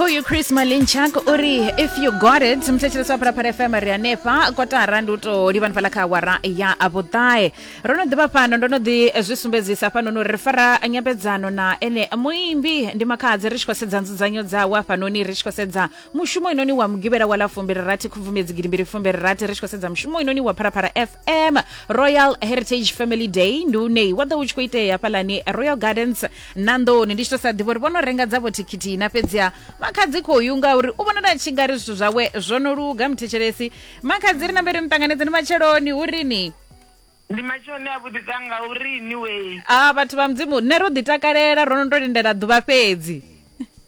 khoyu chris malinchak o ri if you got it muthetsheleswa phalaphala fm ri hanefha kotara ndi u tou livhani fhala kha awara ya vhuṱae ro no ḓivha fhano ndo no ḓi zwi sumbedzisa fhanoni uri ri fara nyambedzano na ene muimbi ndi makhadzi ri tshi khou sedza nzudzanyo dzawe hafhanoni ri tshi khou sedza mushumo inoni wa mugivhela wa ḽa fumbirirathi khubvumedzi gidi mbili fumbirirathi ri tshi khou sedza mushumo inoni wa phalaphala fm royal heritage family day ndi une wa ḓo u tshi khou itea hafhalani royal gardens na nḓoni ndi tshi to sa ḓivha uri vhono renga dzavho thikhithi na fhedziha makhadzi khou yunga uri u vhonala a tshi nga ri zwithu zwawe zwo no luga muthetshelesi makhadzi ri na mberi muṱanganedzeni matsheloni hu rini ndi matshoni a vhuḓisa nga uri ni wei a vhathu vha mudzimu nṋe ro ḓi takalela ro no to lindela ḓuvha fhedzi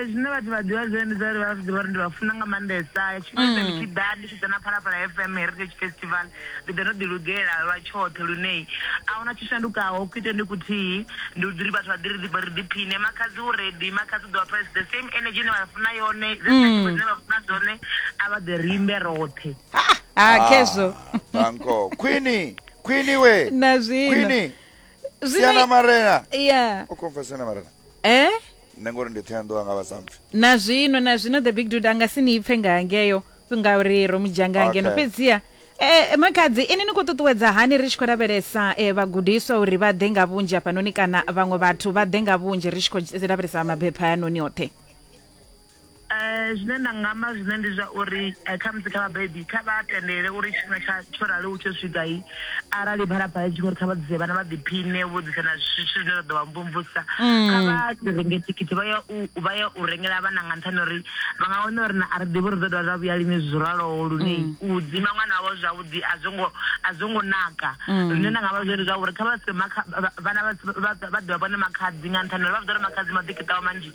Zwine vhathu vha ḓivha zwone ndi zwa uri vha ḓivha uri ndi vha funa nga maanḓesa tshifhinga tshoṱhe ndi tshi ḓa ndi tshi ḓa na phalaphala fm heritage festival ndi ḓa ndo ḓi lugela lwa tshoṱhe lune a huna tshi shandukaho ku ite ndi kuthihi ndi uri vhathu vha ḓi ri ḓi ri ḓiphine makhadzi u redi makhadzi u ḓo vha pha the same energy ine vha funa yone dzine vha funa dzone a vha ḓe rimbe roṱhe ha khezwo banko khwini khwini we na zwino Zwino- siana marena yeah u khomfa siana marena eh nṋe ngori ndi thoyanḓowa nga vhasampfi na zwino na zwino the big dude anga si ni ipfe nga hangeyo ngauri ro mudzhanga ngeno Okay. fhedziha Eh, makhadzi ini ni khou ṱuṱuwedza hani ri tshi khou lavhelesa eh, vhagudiswa uri vha ḓe nga vhunzhi hafhanoni kana vhaṅwe vhathu vha ḓe nga vhunzhi ri tshi khou lavhelesa mabepha hayanoni oṱhe Zwine nda nga amba zwine ndi zwa uri khamusi kha vhabebi kha vha tendele uri tshifhinga tsha tsho raliho tsho swika arali phalaphala itshi kho ri kha vha ḓise vhana vha ḓiphiṋe vho ḓisa na zwithu zwine zwa ḓo vha mvumvusa kha vha renge thikhithi vha ya u vha ya u rengela vhana nga nṱhani uri vha nga wana uri na a ri ḓivhi uri ḓo dovha zwa vhuya lini zwo raloho lune u dzima ṅwana wavho zwavhuḓi a zwo ngo a zwo ngo naka zwine nda nga vha zwone zwa uri kha vha se makha vhana vha vha ḓivha vhone makhadzi nga nṱhani uri vha vha ḓo ri makhadzi maḓi kiṱaho manzhi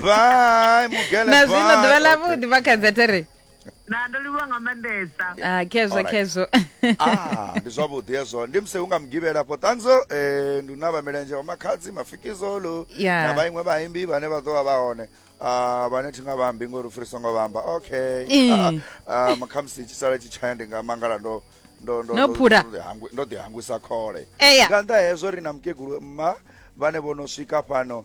bye mugele na zwino bye. ḓuvha ḽa vhuḓi makhadzi atere na ndo livhuwa nga maanḓesa Ah, khezwo Alright. khezwo Ah, ndi zwavhuḓi hezwo ndi musi hu nga mugivhela afho ṱanzo eh, ndi na vhamilenzhe wa makhadzi mafikizolo Yeah. na vhainwe vhaimbi vhane vha ḓo vha vha hone Ah, vhane thi nga vhambi ngori u fhirisa ngo vhamba okay Eh. Ah, ah, makhamusi tshisala tshi tshaya ndi nga mangala ndo ndo ndo- No ndo- phura. ndo ḓihangwi- ndo ḓihangwisa khole Eya. nga nnḓa hezwo ri na mukegulu mma vhane vho no swika fhano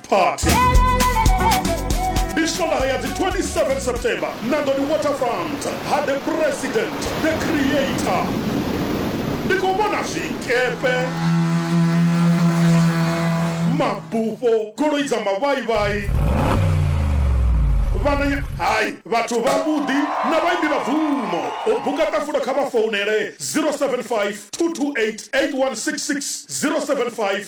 party ndi swondaha ya dzi 27 september nangoni waterfront ha the president the creator ndi khou vhona zwikepe mabufho goloi dza mavhaivhai vhananya hai vhathu vhavhuḓi na vhaimbi vha bvumo u buka ṱafula kha vha founele 075 228 8166 075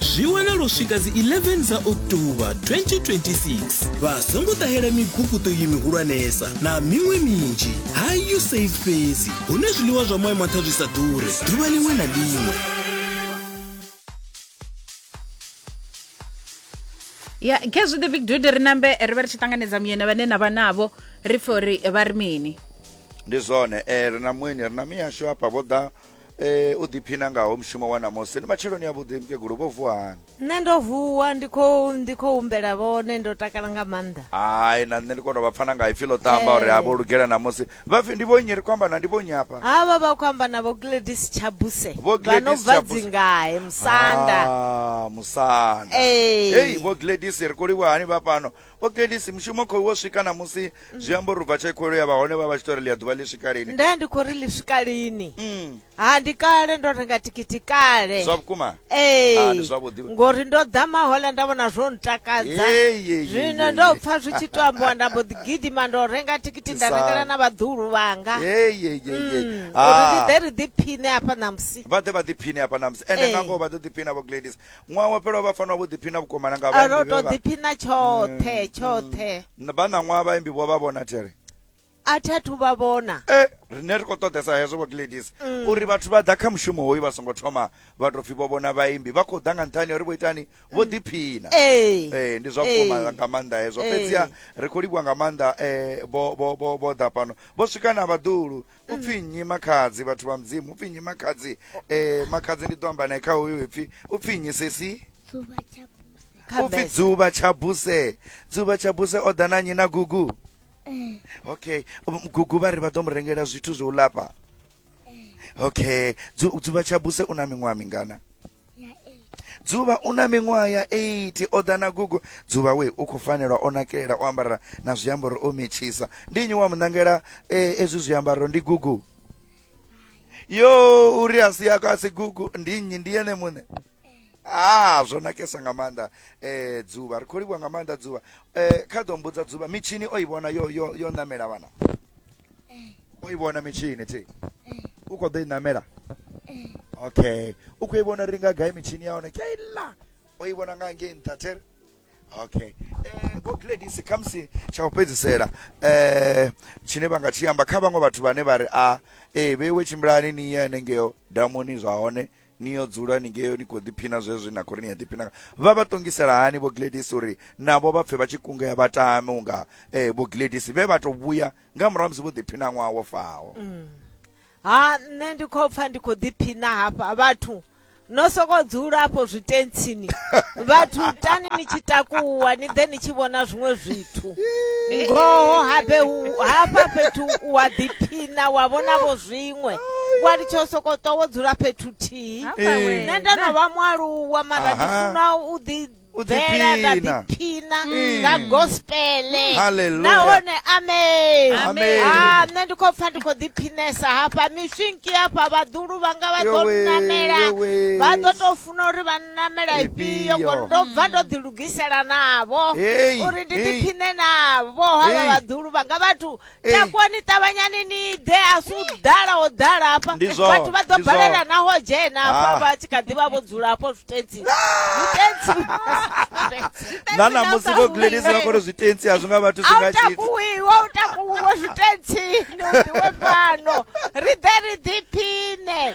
zwi wanala u swika dzi 11 dza october 2026 vha songo ṱahela miguguṱo iyi mihulwanesa na miṅwe minzhi ha usaid fhedzi hune zwiḽiwa zwa moya maṱha zwi sa ḓure ḓuvha liṅwe na liṅwe ya khezwi the big dude ri nambe ri vha ri tshi ṱanganedza muyeni vhane na vha navho ri pfhe uri vha ri mini ndi zwone eh, ri na muyeni ri na miyashu hafha vho ḓa Eh, u ḓiphina ngaho mushumo wa ṋamusi ndi matsheloni avhuḓi mukegulu vho vuwa hani nṋe ndo vuwa ndi khou ndi khou humbela vhone ndo takala nga maanḓa hai na nṋe ndi kono vha pfana nga ipfi ḽo ṱamba uri Eh. ha vho lugela ṋamusi vha pfi ndi vho nnyi ri khou amba na ndi vho nnyi hafha havha vha khou amba na vho gladys tshabuse Vho vha no Gladys bva Tshabuse. dzingahe musanda Ah, musanda Eh. Hey, vho gladys ri khou livha hani vha fhano ogelisi mushumo khou wo swika na musi mm. zwi amba uri bva tsha ikholo ya vha hone vha vha tshi to ri ḽi a ḓuvha ḽi swika lini nda ndi khou ri ḽi swika lini mm. ha ndi kale ndo renga tikiti kale zwa vhukuma ee ngori ndo ḓa mahola nda vhona zwo ntakadza zwino ndo pfa zwi tshi to ambiwa nda mbo ḓi gidima ndo renga tikiti nda rengela na vhaḓuhulu vhanga mm. ah. uri ndi ḓe ri ḓiphine hafha ṋamusi vha ḓe vha ḓiphine hafha ṋamusi ende nangoho vha ḓo ḓiphina vho gladis ṅwaha wo fhelaho vha fanela vho ḓiphina vhukoma na nga a ro to ḓiphina tshoṱhe tshoṱhe vha na ṅwaha vhaimbi vho vha vhona tere a thi athu vha vhona e rine ri khou ṱoḓesa hezwo vho gladis mm. uri vhathu vha ḓa kha mushumo hoyu vha songo thoma vha tou pfhi vho vhona vhaimbi vha khou ḓa nga nṱhani uri vho itani vho mm. ḓiphina ee eh, ndi zwa vhukuma eh. nga maanḓa hezwo eh. fhedziha ri khou livhuwa nga maanḓa um vho ḓa fhano vho swika na vhaḓulu upfi nnyi makhadzi vhathu vha mudzimu upfi nnyi makhadzi eh makhadzi ndi ḓo amba naye kha hoyo ipfi upfi nnyi sesi Dzuvha tsha buse. upfi Khabese. dzuvha tsha buse dzuvha tsha buse o ḓa na nnyi na gugu Eh, okay Um, gugu vha ri vha ḓo mu rengela zwithu zwo u lafha okay Dzu- dzuvha tsha buse u na miṅwaha mingana dzuvha u na miṅwaha ya 8 o ḓa na gugu dzuvha we u khou fanelwa o nakelela o ambara na zwiambaro o metshisa ndi nnyi wa muṋangela e, ezwi zwiambaro ndi gugu yo uri a si yako a si gugu ndi nnyi ndi yene muṋe ha ah, zwo nakesa nga maanḓa um dzuvha ri khou livhuwa nga maanḓa dzuvha um kha ḓo mbudza dzuvha mitshini o i vhona yo yo yo ṋamela vhana o i vhona mitshini thi u khou ḓo i ṋamela okay u khou i vhona ri nga gai mitshini ya hone keila o i vhona nga ngei nṱha there okay eh, vho gladis khamusi tsha u fhedzisela um tshine vha nga tshi amba kha vhaṅwe vhathu vhane vha ri a ah, ee eh, vheiwe tshimbilani ni ye hanengeo damuni zwa hone Ni yo dzula ni ngeo ni khou ḓiphina zwezwi na khou ri ni a ḓiphina nga. Vha vha ṱongisela hani Vho Gladys uri navho vha pfe vha tshi kungea vha tame u nga eh, Vho Gladys vhe vha tou vhuya nga murahu ha musi vho ḓiphina ṅwaha wo faho? Ha nṋe ndi khou pfa ndi khou ḓiphina hafha vhathu no sokou dzula afho zwitentsini vhathu tani ni tshi takuwa ni ḓe ni tshi vhona zwiṅwe zwithu vhathu ngoho habe hafha fhethu wa ḓiphina wa vhona vho zwiṅwe wa litsha u sokou ṱwa wo dzula fhethu thihi nṋe ndo no vha mualuwa mara ndi funa u ḓi bvela nda ḓiphina mm. nga gospele nahone amen a ah, nṋe ndi khou pfa ndi khou ḓiphinesa hafha miswinki hafha vhaḓulu vhanga vha ḓo nnamela vha ḓo tou funa uri vha namela ifhio Ifhio. ngori ndo bva ndo ḓi lugisela navho Hey, uri ndi hey. ḓiphine navho havha Hey. vhaḓulu vhanga vhathu Hey. takuwani ṱavhanyani ni ḓe a si u ḓala ho ḓala hafha Ndi zwone, vhathu vha ḓo ndi balela zwone. naho dzhena Ah. hafha vha tshi kha ḓi vha vho dzula hafho zwitentsi zwitentsi na namusi vho gladys vha kone zwitentsi a zwi nga vhathu zwi a nga u tshithu takuwiwe a u takuwiwe zwitentsi ni u ḓiwe fhano ri ḓe ri ḓiphine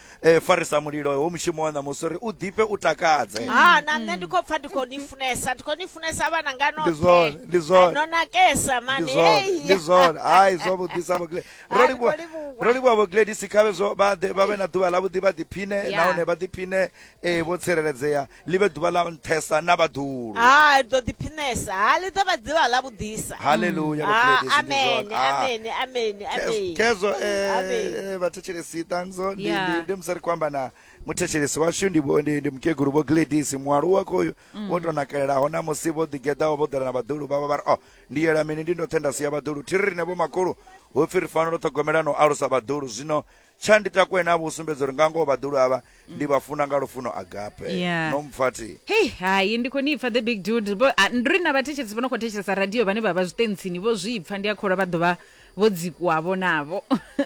e farisa mulilo ho mushumo wa ṋamusi uri u ḓifhe u takadze ha na nṋe ndi khou pfa ndi khou ni funesa ndi khou ni funesa vhana nga Ndi zwone, ndi zwone. no nakesa ndi mani zwone Hey! ndi zwone hai zwo vhuḓisa vho Gladys. ro Hai, livhuwa ro livhuwa. ro livhuwa vho gladisi khavhe zwo vha ḓe- vha vhe na ḓuvha ḽavhuḓi vha ḓiphine Yeah. nahone vha ḓiphine eh, vho tsireledzea ḽi vhe ḓuvha ḽa nṱhesa na vhaḓulu ha ri ḓo ḓiphinesa ha ḽi ḓo vha ḓivha ḽa vhuḓisa haleluya ha vhakrete, zwi ndi amene zwone. Ah. amene amene Ke- amene kezo Amen. eh, vhathetshelesi ṱanzo ndi- Yeah. ndi- ndi musi ri khou amba na muthetshelesi washu ndi vho- ndi ndi mukegulu vho gladis mualuwa khoyu Mm. wo tou nakelelaho na musi vho ḓigeḓaho vho ḓela na vhaḓulu vhavho vha ri o ndi yela mini ndi ndoṱhe nda sia vhaḓulu thi ri rine vho makhulu hu pfi ri fanela u ṱhogomela na u alusa vhaḓulu zwino tsha ndi takwena avho u sumbedza uri nga ngoho vhaḓulu avha ndi vha funa nga lufuno agape Yeah. no mpfati hei hai ndi khou ni pfa the big dude Vho- ah, ndi ri na vhathetshelesi vho no khou thetshelesa radio vhane vha vha zwiṱentsini vho zwi pfa ndi a kholwa vha ḓovha vho dzikuwavho navho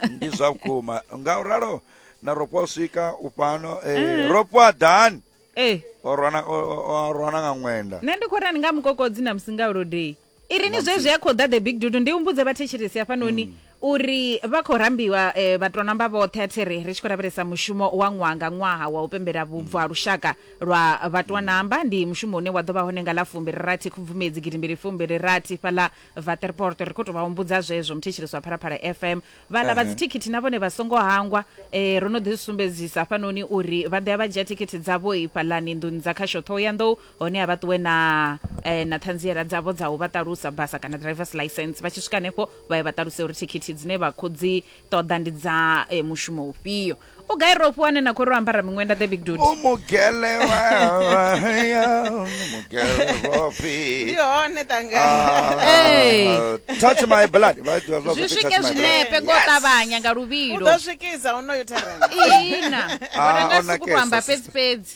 ndi zwa vhukuma nga u ralo na ropo u swika u fhano eh, ropo a dan ee o rwana o- o- o rwana nga ṅwenda nṋe ndi khou rani nga mukokodzi na musi nga ulodei i ri ni zwezwi a khou ḓa the big dudu ndi humbudze vhathetshelesi hafhanoni mm. uri vha khou rambiwa um eh, vhatonamba vhoṱhe a thi ri ri tshi khou lavhelesa mushumo wa ṅwaha nga ṅwaha wa u pembela vhubvo ha lushaka lwa vhatonamba mm. ndi mushumo une wa ḓo vha hone nga ḽa fumbiri rathi khubvumedzi gidimbili fumbiri rathi fhaḽa vaterporto ri khou tou vha humbudza zwezwo muthetshelesi wa phalaphala fm vhaḽa vha dzithikhithi na vhone vha songo hangwa um ro no ḓi sumbedzisa hafhanoni uri vha ḓo ya vha dzhia thikhithi dzavho i fhaḽani nḓuni dza khasho ṱhoho ya nḓou hone a vha ṱuwe na eh, na ṱhanziela dzavho dza u vha ṱalusa basa kana drivers license vha tshi swika hanefho vha ye vha ṱaluse uri thikhithi dzine vha khou dzi ṱoḓa ndi dza eh, mushumo ufhio u gai ro fhiwa ane na khou ri o ambara miṅwenda the big dude umugele waya umugele ndi rofi hone tanga Hey. Ah, touch my blood Vha ḓivha zwa zwi kuti swike touch my blood. zwinepe ngo ṱavhanya nga u luvhilo ḓo swikisa honoyo therena ina Ah, wana ona suku to amba kesa, fhedzi fhedzi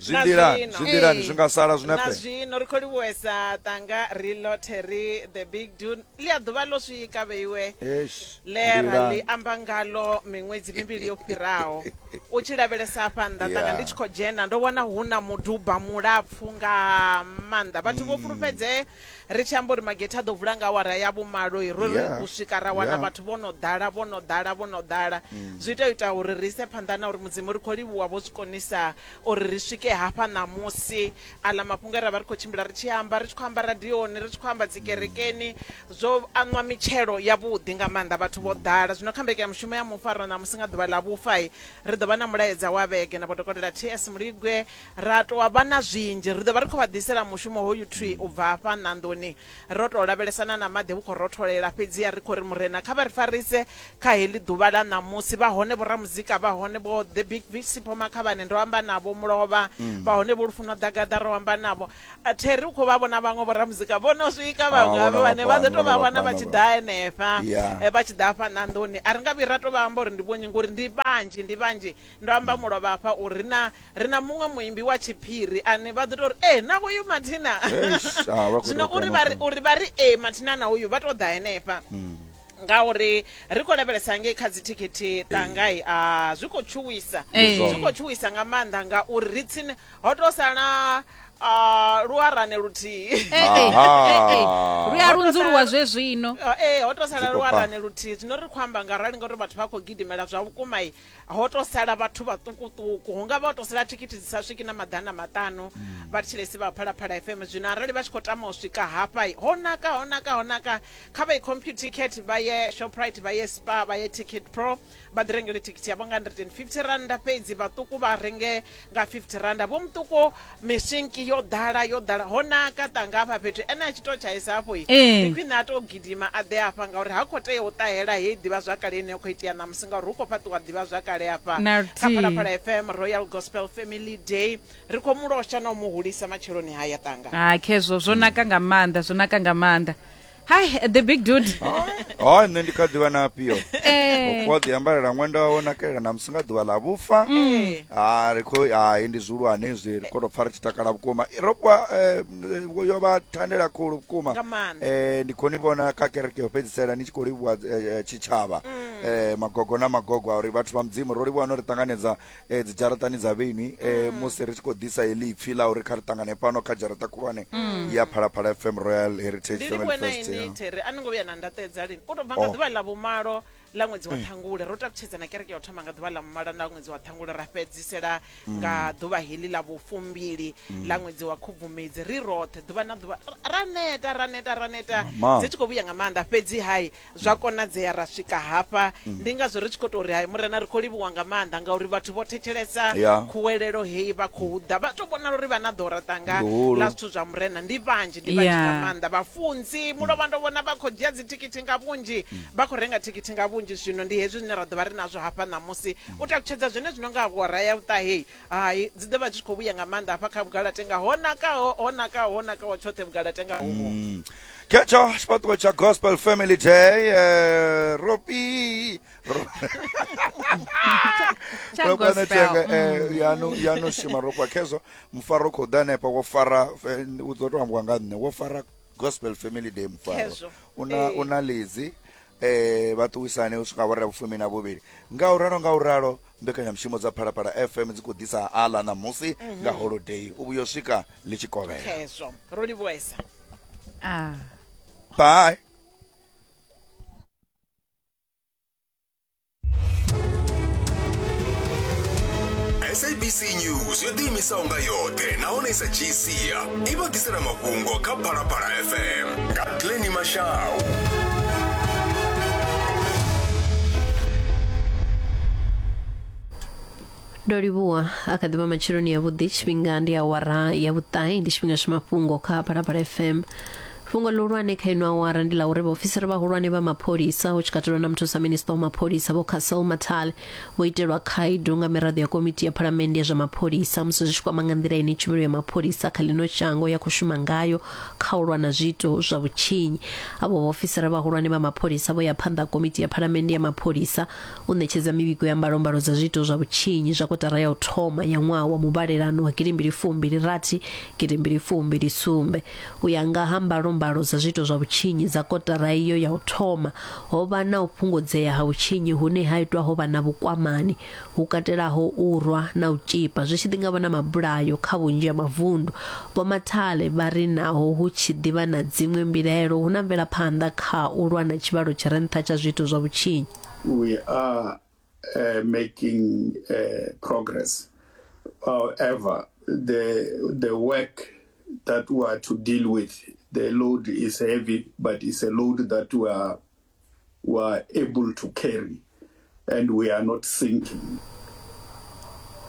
zwi Na nḓilani zwino. zwi nḓilani zwi nga sala na zwinepe zwino ri khou livhuwesa tanga ri lothe ri the big du ḽi a ḓuvha ḽo swika vheiwe Eish, ḽe ra nḓilani. ḽi amba ngalo miṅwedzi mivhili yo fhiraho u tshi lavhelesa afha nnḓa tanga Yeah. ndi tshi khou dzhena ndo vhona hu na muduba mulapfu nga maanḓa vhathu vho fhulufhedzee Ri tshi amba uri magethe a ḓo vula nga awara ya vhumalo, ro ri yeah. u swika ra wana yeah. vhathu vho no ḓala vho no ḓala vho no ḓala mm. zwi ita ita uri ri ise phanḓa na uri mudzimu ri khou livhuwa vho zwi konisa uri ri swike hafha ṋamusi aḽa mafhungo e ra vha ri khou tshimbila ri tshi amba ri tshi khou amba radioni ri tshi khou amba dzikerekeni mm. zwo aṋwa mitshelo yavhuḓi nga maanḓa vhathu vho mm. ḓala zwino kha mbeke ya mushumo ya mufaro ṋamusi nga ḓuvha ḽa vhufa ri ḓo vha na mulaedza wa vhege na vhodokotela ts muligwe Ra tou vha na zwinzhi. Ri ḓo vha ri khou vha ḓisela mushumo hoyu thwii u bva hafha nḓandoni ro tou lavhelesana na maḓi vhu khou rotholela. Fhedziha ri khou ri, Murena, kha vha ri farise kha heḽi ḓuvha ḽa ṋamusi. Vha hone vhoramuzika, vha hone vho The Big Fish, Sipho Makhavhane, ndo amba navho, Mulovha, vha hone vho Lufuno Ḓagaḓa, ro amba navho. Terry u khou vha vhona vhaṅwe vhoramuzika vho no swika, vhaṅwe Vha havha vhona vha vhane vha ḓo fhano, tou vhona vha vha vhona vha fhano, tshi vhona. ḓa henefha, Ya. eh, vha tshi ḓa hafha ṋanḓoni. A ri nga vhuyi ra tou vha amba uri ndi vhonnyi ngori ndi vhanzhi, ndi vhanzhi. Ndo amba mulovha hafha uri ri na ri na muṅwe muimbi wa tshiphiri ane vha ḓo tou ri e na hoyu mathina Eish, ah, vha khou zwino tou uri vha ri- kona. uri vha ri e mathina na hoyu vha tou ḓa henefha Hmm. ngauri ri khou lavhelesa ngei kha dzithikhithi tangai a zwi khou tshuwisa Eh. zwi khou tshuwisa nga maanḓa ngauri ri tsini ho tou sala ah, luarane luthihi Eh, eh, eh, eh. Aha. lu a lunzuluwa zwe zwino ee ho tou sala Zwi khou luarane luthihi zwino ri khou amba nga rali ngauri vhathu vha khou gidimela zwa vhukuma i ho to sala vhathu vhaṱukuṱuku hu nga vha ho to sala thikhithi dzi sa swiki na maḓana maṱanu mm. vha thilesi vha phalaphala fm zwino arali vha tshi khou tama u swika hafha ho naka ho naka ho naka kha vha i compute ticket vha ye shoprite vha ye spa vha ye ticket pro vha ḓi rengele thikhithi yavho nga 150 randa fhedzi vhaṱuku vha renge nga 50 randa vho muṱuku mishinki yo ḓala yo ḓala ho naka tanga hafha fhethu ene a tshi to tshaisa hafho i eh. ndi khwine a to gidima a ḓe hafha ngauri ha khou tea u ṱahela heyi ḓivha zwakale ine ya khou itea ṋamusi ngauri hu khou fhaṱiwa ḓivha zwakale hafha kha phalaphala fm royal gospel family day ri khou mu losha na u mu hulisa matsheloni haya tanga ha khezwo zwo naka nga maanḓa zwo naka nga maanḓa hi the big dude o nṋe ndi kha ḓivha na afhio Eh. ukho ḓi ambalela ṅwenda wawe nakelela na musi nga ḓuvha ḽa vhufa Mm. ha ri khou hai ndi zwihulwane zwi ri khou tou pfa ri tshi takala vhukuma I- ro vha eh, m- yo vha thandela khulu vhukuma Nga maanḓa. Eh, ndi khou ni vhona kha kereke yo fhedzisela ni tshi khou livhuwa eh, eh, tshitshavha Eh, magogo na magogo a uri vhathu vha mudzimu ro livhuwa no ri ṱanganedza eh, dzidzharaṱani dza vheni eh, mm. musi ri tshi khou ḓisa heḽi ipfi ḽa uri kha ri ṱangane fhano kha dzharaṱa khulwane mm. ya phalaphala fm royal heritage ndi livhuwe na ini tere a ni ngo vhuya na ndaṱedza lini u tou bva nga oh. ḓuvha ḽa vhumalo ḽa ṅwedzi wa mm. ṱhangule ro takutshedza na kereke ya u thoma nga ḓuvha ḽa vhumalo na ṅwedzi wa ṱhangule ra fhedzisela nga ḓuvha heḽi ḽa vhufumbili ḽa ṅwedzi wa khubvumedzi ri roṱhe ḓuvha na ḓuvha ra neta ra neta ra neta dzi tshi khou vhuya nga maanḓa fhedzi hai Zwa konadzea ra swika hafha mm. ndi ngazwo ri tshi khou tou ri hai murena ri khou livhuwa nga maanḓa ngauri vhathu vho thetshelesa khuwelelo heyi vha khou ḓa vha tou vhonala uri vha na ḓora ṱanga ḽa zwithu zwa murena ndi vhanzhi ndi vhanzhi nga maanḓa vhafunzi mulovha ndo vhona vha khou dzhia dzithikithi nga vhunzhi mm. vha khou renga thikithi nga vhunzhi zwino ndi hezwi zwine ra ḓo vha ri nazwo hafha ṋamusi mm. u takutshedza zwine zwino nga hora ya vhuṱaheyi Hai, dzi ḓo vha dzi tshi khou vhuya nga maanḓa hafha kha vhugalatenga ho nakaho ho nakaho ho nakaho tshoṱhe vhugalatenga hovho mm. khetsho tshifhaṱuwo tsha gospel family day eh, ropi ropanetenga eh, mm. yanu yanu shima ropa khezwo mufaro khou ḓa hanefha wo fara eh, u ḓo to ambiwa nga nṋe wo fara gospel family day mufaro una una lizi eh vha ṱuwisane u swika vho re vhufumi na vhuvhili nga u ralo nga u ralo Mbekanyamushumo dza Phalaphala FM dzi khou ḓisa aḽa ṋamusi nga holodei u vhuya u swika ḽi tshi kovhela. khezwo ro livhuwesa Ah. Bye. sabc news yo ḓiimisaho nga yoṱhe nahone i sa dzhii sia i vha ḓisela mafhungo kha phalaphala fm Katleni Mashau. ndo livhuwa a kha ḓivha matsheloni ya vhuḓi tshifhinga ndi awara ya vhuṱahe ndi tshifhinga tsha mafhungo kha phalaphala fm fhungo ḽihulwane kha ino awara ndi ḽa uri vhaofisiri vhahulwane vha mapholisa hu tshi katelwa na muthusa minista wa mapholisa vho casel matale vho itelwa khaedu nga miraḓo ya komiti ya phalamennde ya zwa mapholisa musi zwi tshi kwama nga nḓila ine tshumelo ya mapholisa kha ḽino shango ya khou shuma ngayo kha u lwa na zwiito zwa vhutshinyi. Avho vhaofisiri vhahulwane vha mapholisa vho ya phanḓa ha Komiti ya Phalamennde ya Mapholisa u ṋetshedza mivhigo ya mbalombalo dza zwiito zwa vhutshinyi zwa kotara ya u thoma ya ṅwaha wa muvhalelano wa gidimbili fumbili rathi gidimbili fumbili sumbe. U ya nga ha mbalombalo dza zwiito zwa vhutshinyi dza kotara iyo ya u thoma, ho vha na u fhungudzea ha vhutshinyi hune ha itwa ho vha na vhukwamani hu katelaho u rwa na u tzhipa, zwi tshi ḓi nga vha na mabulayo kha vhunzhi ha mavundu. Vho Mathale vha ri naho hu tshi ḓi vha na dziṅwe mbilaelo, hu na mvelaphanḓa kha u lwa na tshivhalo tshi re nṱha tsha zwiito zwa vhutshinyi. We are uh, making uh, progress. However, the, the work that we are to deal with, the load is heavy, but it's a load that we are We are able to carry and we are not sinking.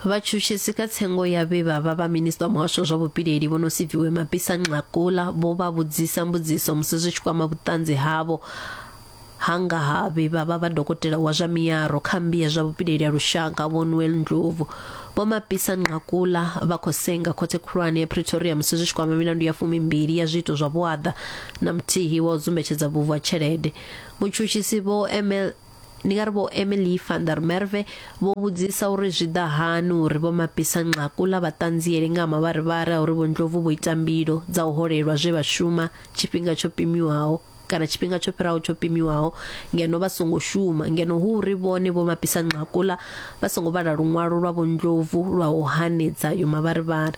vhatshutshisi kha tsengo ya vhe vha vha vha minista wa muhasho wa zwa vhupileli vho no siviwe mabisa nxakula vho vha vhudzisa mbudziso musi zwi tshi kwama vhuṱanzi havho hanga ha vhe vha vha vha dokotela wa zwa miyaro kha mmbi ya zwa vhupileli ya lushaka vho noel ndlovu vho mabisa nxakula vha khou senga khothe khulwane ya pretoria musi zwi tshi kwama milandu ya fumimbili ya zwiito zwa vhuaḓa na muthihi wa u dzumbetshedza vhuvhu ha tshelede mutshutshisi vho emel ndi nga ri vho emily van der merve vho vhudzisa uri zwi ḓa hani uri vho mapisa nxaku ḽa vhaṱanzieli nga ha mavharivhari a uri vho ndlovu vho ita mbilo dza u holelwa zwe vha shuma tshifhinga tsho pimiwaho kana tshifhinga tsho fhiraho tsho pimiwaho ngeno vha songo shuma ngeno hu uri vhone vho mapisa nxakuḽa vha songo vhala luṅwalo lwa vho ndlovu lwa u hanedza yo mavharivhari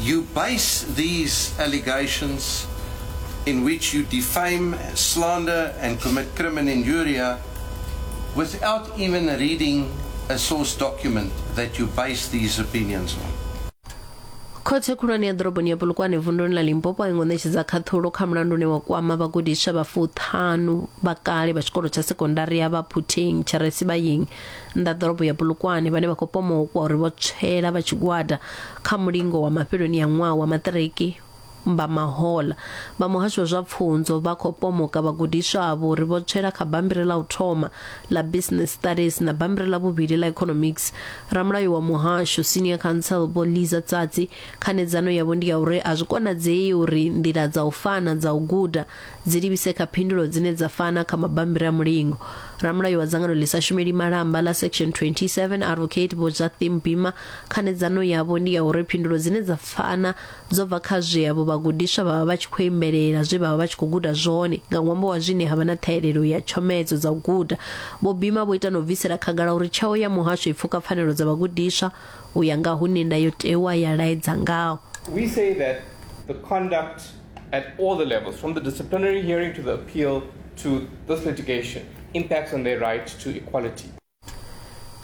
You base these allegations in which you defame, slander and commit crim and injuria without even reading a source document that you base these opinions on. khothe khulwane ya ḓoroboni ya polokwane vunduni ḽa limpopo a i ngo ṋetshedza khaṱhulo kha mulandu une wa kwama vhagudiswa vha fuṱhanu vha kale vha tshikolo tsha sekondari ya vha phuthing tshiresi vha ying nnḓa ḓorobo ya bulukwane vhane vha khou pomokwa uri vho tswela vha tshigwada kha mulingo wa mafheloni ya ṅwaha wa maṱiriki vha mahola vha muhasho wa zwa pfunzo vha khou pomoka vhagudiswa avho uri vho tswela kha bammbiri ḽa u thoma ḽa business studies na bammbiri ḽa vhuvhili ḽa economics ramulayo wa muhasho senior council vho liza tsatsi khanedzano yavho ndi ya uri a zwi konadzei uri nḓila dza u fana dza u guda dzi livhise kha phindulo dzine dza fana kha mabammbiri a mulingo ramulayo wa dzangano ḽi sa shumeli malamba ḽa section 27 advocate vho jathim bima khanedzano yavho ndi ya uri phindulo dzine dza fana dzo bva kha zwe avho vhagudiswa vha vha vha tshi khou imbelela zwe vha vha vha tshi khou guda zwone nga ṅwambo wa zwine ha vha na ṱhahelelo ya tshomedzo dza u guda vho bima vho ita na u bvisela khagala uri tsheo ya muhasho i pfuka pfanelo dza vhagudiswa u ya nga hune ndayotewa ya laedza ngaho We say that the conduct at all the levels, from the disciplinary hearing to the appeal to this litigation, impacts on their right to equality.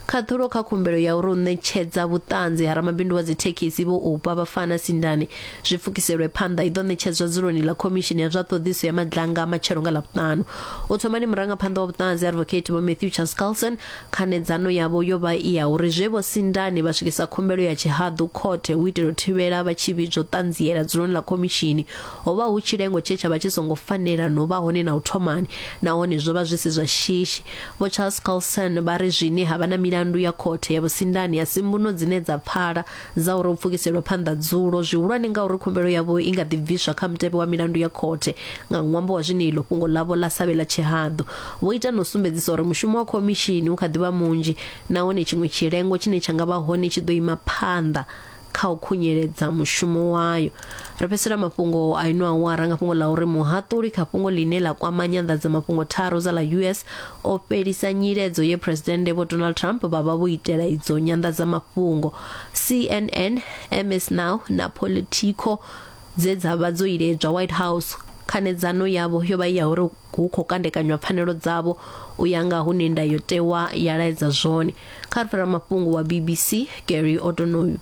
khaṱhulo kha khumbelo ya uri u ṋetshedza vhuṱanzi ha ramabindu wa dzithekhisi vho upa vhafana sindani zwi pfukiselwe phanḓa i ḓo ṋetshedzwa dzuloni ḽa khomishini ya zwa ṱhoḓiso ya madlanga a matshelo nga ḽavhuṱanu u thomani murangaphanḓa wa vhuṱanzi advocate vho matthew charles carlson Khanedzano yavho yo vha i ya uri zwe Vho Sindani vha swikisa khumbelo ya tshihaḓu khothe hu itela u thivhela vha tshi vhidzwa u ṱanziela dzuloni ḽa khomishini ho vha hu tshilengo tshe tsha vha tshi songo fanela no vha hone na u thomani nahone zwo vha zwi si zwa shishi. Vho Charles Colson vha ri zwine ha vha na milandu ya khothe ya Vho Sindani a si mbuno dzine dza pfala dza uri u pfukiselwe phanḓa dzulo zwihulwane ngauri khumbelo yavho i nga ḓi bviswa kha mutevhe wa milandu ya khothe nga ṅwambo wa zwine iḽo fhungo ḽavho ḽa savhe ḽa tshihaḓu vho ita na u sumbedzisa uri mushumo wa khomishini u kha ḓi vha munzhi nahone tshiṅwe tshilengo tshine tsha nga vha hone tshi ḓo ima phanḓa kha u khunyeledza mushumo wayo ri fhedzisela mafhungo a ino awara nga fhungo ḽa uri muhaṱuli kha fhungo ḽine ḽa kwama nyanḓadzamafhungo tharu dza ḽa us o fhelisa nyiledzo ye phuresidennde vho donald trump vha vha vho itela idzo nyanḓadzamafhungo cnn ms now na politico dze dza vha dzo iledzwa white house khanedzano yavho yo vha i ya uri hu khou kandekanywa pfanelo dzavho u ya nga hune ndayotewa ya laedza zwone kha ri fhira mafhungo wa bbc gary odonoyu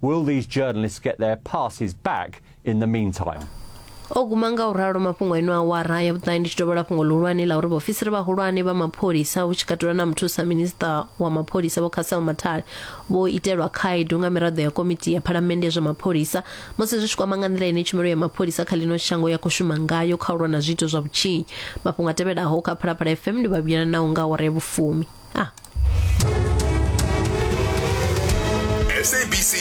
Will these journalists get their passes back in the meantime? o guma nga u ralo mafhungo eno awara ya vhuṱahe ndi tshi dovhela fhungo ḽihulwane ḽa uri vhaofisiri vhahulwane vha mapholisa hu tshi katela na muthusa minista wa mapholisa vho khasel mathale vho itelwa khaedu nga miraḓo ya komiti ya phalamennde ya zwa mapholisa musi zwi tshi kwama nga nḓila ine tshumelo ya mapholisa kha ḽino shango ya khou shuma ngayo kha u lwa na zwiito zwa vhutshinyi mafhungo a tevhelaho kha phalaphala fm ndi vhavhuyela nawo nga awara ya vhufumi ah. SABC